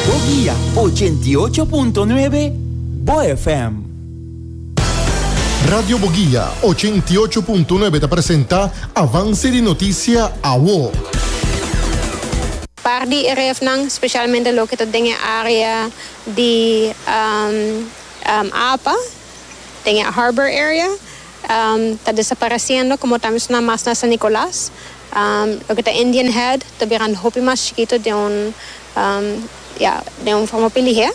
Bo guia ochenta i ocho punto nuebe Bo FM. Radio Bo Guia ochenta i ocho punto nuebe ta presenta Avance di Noticia Awo. Par di e refnan, specialmente loke ta den e area di Apa, den e Harbor Area, ta desapareciendo como ta mencioná mas na San Nicolas. Loke ta Indian Head ta bira un hopi mas chikito den un ya den un forma hopi lihé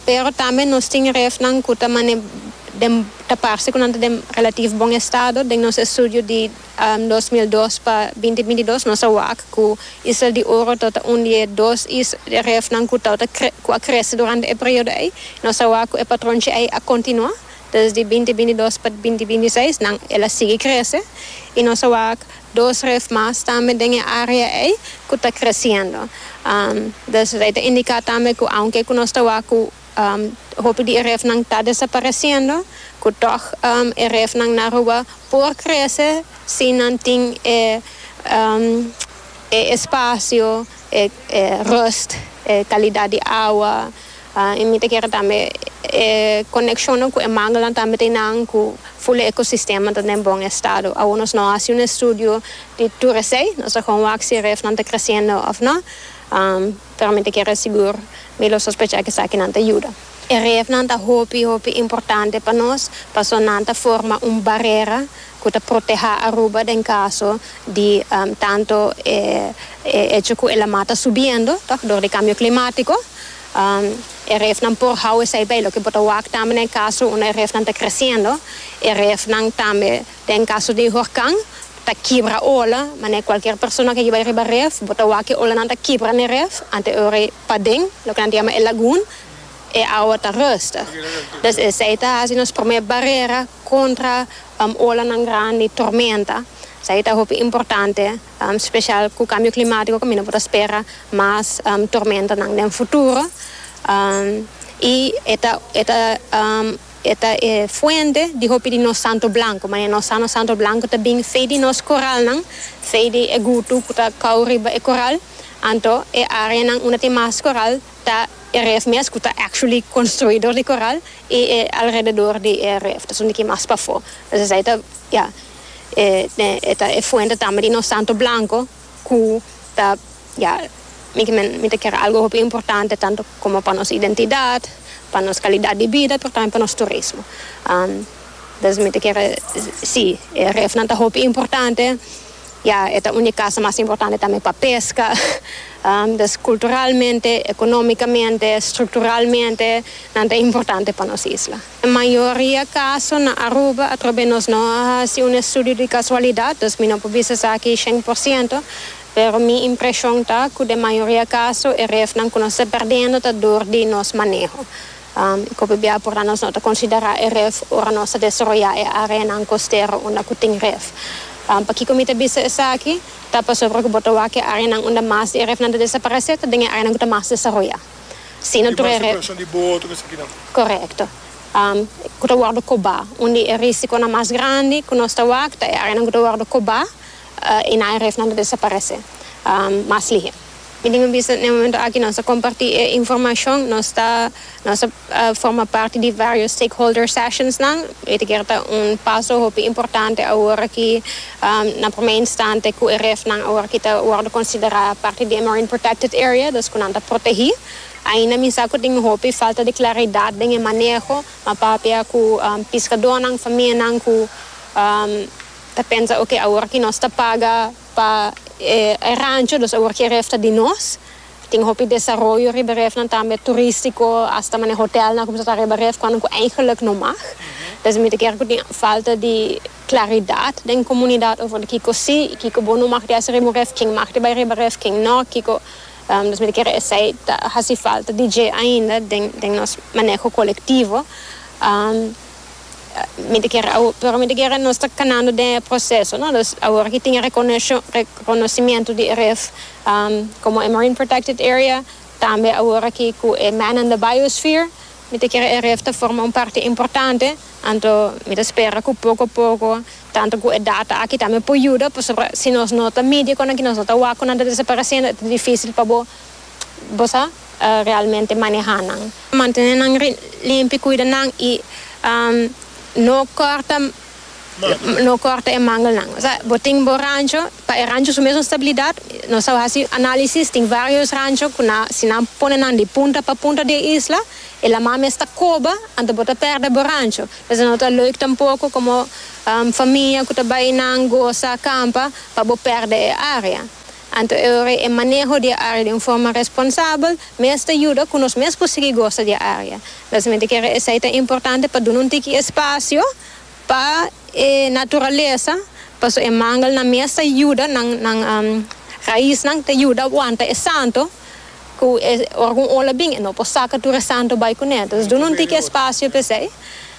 pero tambe nos tin refnan ku ta mane den ta parse ku nan ta den relativo bon estado den nos estudio di dos mil dos pa binti binti dos nos a wak ku Isla di Oro ta ota un di e dos is refnan ku ta ota ku a krese durante e periodo ei nos a wak ku e patronchi ei a kontinua Desdi binti binti dos pa binti binti seis nan el a sigui krese y nos a wak dos ref mas tambe den e area ey cu ta creciendo. Des rey ta indica tambe cu aunke cu nos ta wak cu hopi di e ref nan ta desapareciendo cu tog e ref nan na Aruba por crece si nan tin e e espacio, e rust, e calidad di awa. I mi ta kere tambe e konekshonnan ku e manguelan tambe ta e nan ku ful e ekosistema ta den bon estado. Awo nos no a hasi un estudio di tur esei, nos a kon wak si e refnan ta kresiendo òf no, pero mi ta kere sigur, mi lo sospecha ku esakinan ta yuda. E refnan ta hopi hopi importante pa nos paso nan ta forma un barera. cu ta protehá Aruba den caso di tanto e hecho cu e lamá ta subiendo, toch, dor di cambio climático. E refnan por hou esei bay. Loke bo ta wak tambe na e caso unda e refnan ta creciendo, e refnan tambe den caso di horcan ta kibra ola, manera cualkier persona ke bay riba ref bo ta wak ke olanan ta kibra n'e ref anto e ora ei paden loke nan ta yama e lagoon e awa ta rust. Dus esei ta haci nos prome barera. kontra olanan grandi, tormenta. Esei ta hopi importante, spesial ku kambio klimatiko kaminda por ta spera mas tormentanan den futuro. I e ta e ta e ta e fuente di hopi di nos santo blanku. Mane nos sa nos santo blanku ta bin fei di nos koralnan, fei di e gutu ku ta kau riba e koral. Anto e areanan unda tin mas koral Ta e ref mes cu ta actually construi door di coral y e alrededor di e ref ta sundiki mas pafo. Pues esai ta ya e ta e fuente tambe di nos santo blanco cu ta ya mi kimen mi ta kere algo hopi importante tanto como pa nos identidad, pa nos calidad di bida pero tambe pa nos turismo. Entonces mi ta kere si e refnan ta hopi importante. Ya, e ta un di casa mas importante tambe pa pesca. Pues culturalmente, economicamente, structuralmente nan ta importante pa nos isla. E mayoria caso na Aruba atrobe nos no a haci un estudio di casualidad, dus mi no por bisa esaki shen por ciento, pero mi impresion ta cu den mayoria caso e refnan cu nos ta perdendo ta dor di nos maneho. I ku p'ebia por nan nos no ta konsiderá e ref ora nos ta desaroyá e áreanan kostero unda ku tin ref? Pakiko mi ta bisa esaki? Ta pasobra ku bo ta wak e áreanan unda mas di e refnan ta desaparesé ta den e áreanan ku ta mas desaroyá. Si no tur e ref. Di mas operason di boto ku esakinan. Korekto. Ku ta wòrdu kobá. Un di e rísikonan mas grandi ku nos ta wak ta e áreanan ku ta wòrdu kobá i nan e refnan ta desaparesé mas lihé. Mi tin un bisa n'e momento aki nos a comparti e informacion, nos ta nos a forma parti di varios stakeholder sessionsnan, e ta kier ta un paso hopi importante awor aki na prome instante cu e refnan awor aki ta wordo considera parti di e marine protected area, dus cu nan ta protehi. Ainda mi sa cu tin hopi falta di claridad den e maneho, ma papia cu piscadornan, famianan cu ta pensa ok awor aki nos ta paga, Pa e rancho nos awor ke ref ta di nos. Tin hopi desaroyo riba refnan tambe turistiko hasta mane hotelnan a kumsa ta riba ref kuandan ku eingeluk no mag. P'esei mi ta kere ku tin falta di klaridat den komunidat over di kiko si i kiko bo no mag di hasi riba un ref, ken mag di bai riba ref ken no kiko nos mi ta kere esei ta hasi falta di dje ainda den nos maneho kolektivo. mi ta kere awor, pero mi ta kere nos ta kanando den e proseso, no? Dus awor ki tin e rekonosho, rekonosimiento di RIF komo e Marine Protected Area, tambe awor aki ku e Man and the Biosphere, mi ta kere e RIF ta forma un parti importante, anto mi ta spera ku poko poko, tantu ku e data aki tambe por yuda, pasobra si nos no ta midi e konan aki, nos no ta wak konan ta desaparesiendo, e ta difísil pa bo, bo sa. realmente maneha nan. Mantene nan limpi, cuida nan y no corta no corta e mangelnan. Osea bo tin bo rancho, pa e rancho su mesun stabilidad, nos a haci analisis, tin varios rancho cu nan si nan pone nan di punta pa punta di e isla e laman mes ta coba anto bo ta perde bo rancho. Entonces no ta leuk tampoco como famia cu ta bay nan goza campa pa bo perde e area. Anto e ora e maneho di e área den forma responsabel mes ta yuda ku nos mes por sigui gosa di e área. Mesamente kere esei ta importante pa duna un tiki espasio pa e naturalesa paso e mangelnan mes ta yuda nan nan raisnan ta yuda aguanta e santo ku e ora ku un ola bin e no por saka tur e santo bai kuné. Entonces duna un tiki espasio p'esei